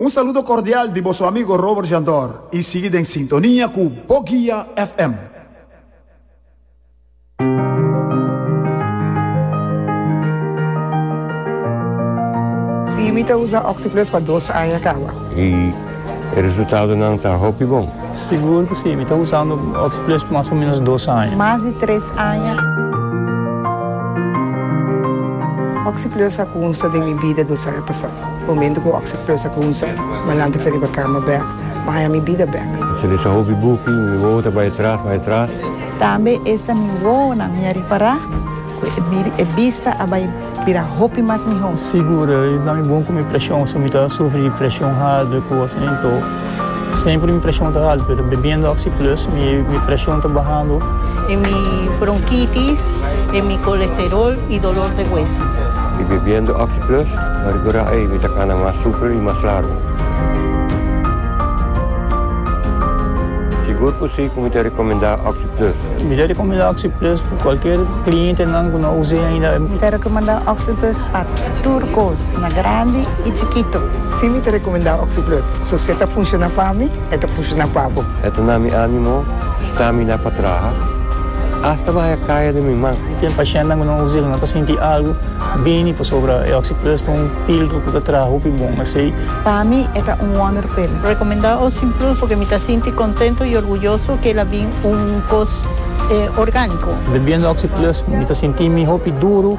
Un saludo cordial di boso amigo Robert Jandor y sigui den sintonia cu Bo Guia FM. Sí, mi ta usa Oxi-Plus pa dos aña caba. Y e resultadonan ta hopi bon. Sigur cu sí, mi ta usando Oxi-Plus pa mas o menos dos aña. Mas di tres aña. Oxi-Plus a cunsta den mi bida dos aña pasado. Momento cu oc se plusa cu un so malanta fe riba cama bek, ma haya mi bida bek. Se lesa hopi buki, mi wowo ta bay atras, bay atras. Tambe esta mi wowonan mi a ripara cu e bista a bay bira hopi mas miho. Sigur, e dami bon cu mi presion, so mi ta sufri di presion harder cu oc nen to. Semper mi preshon ta haltu pero bebiendo oxi plus mi preshon ta bahando. E mi bronkitis e mi kolesterol i dolor de hueso. I bebiendo oxi plus pa rekurá ei mi ta kana mas super i mas largu. Sigur ku si ku mi ta rekomendá oxi plus. Mi ta rekomendá oxi plus pa kualker klientenan ku no us'é ainda. Mi ta rekomendá oxi plus. Pa tur kos, na grandi i chikitu. Si mi ta rekomendá Oxi-Plus, so si e ta funshoná pa mi, e ta funshoná pa bo. E ta na mi ánimo stramina pa traha, asta bahai e kaya den mi man. Ken pashentenan ku nan usa el no ta sinti algu bini pasobra e Oxi-Plus ta un píldru ku ta traha hopi bon. Esei. Pa mi e ta un wonderpil. Rekomendá Oxi-Plus pasobra mi ta sinti kontentu i orguyoso ku el a bin un kos orgániko. Bebiendo Oxi-Plus mi ta sinti mi hopi duru.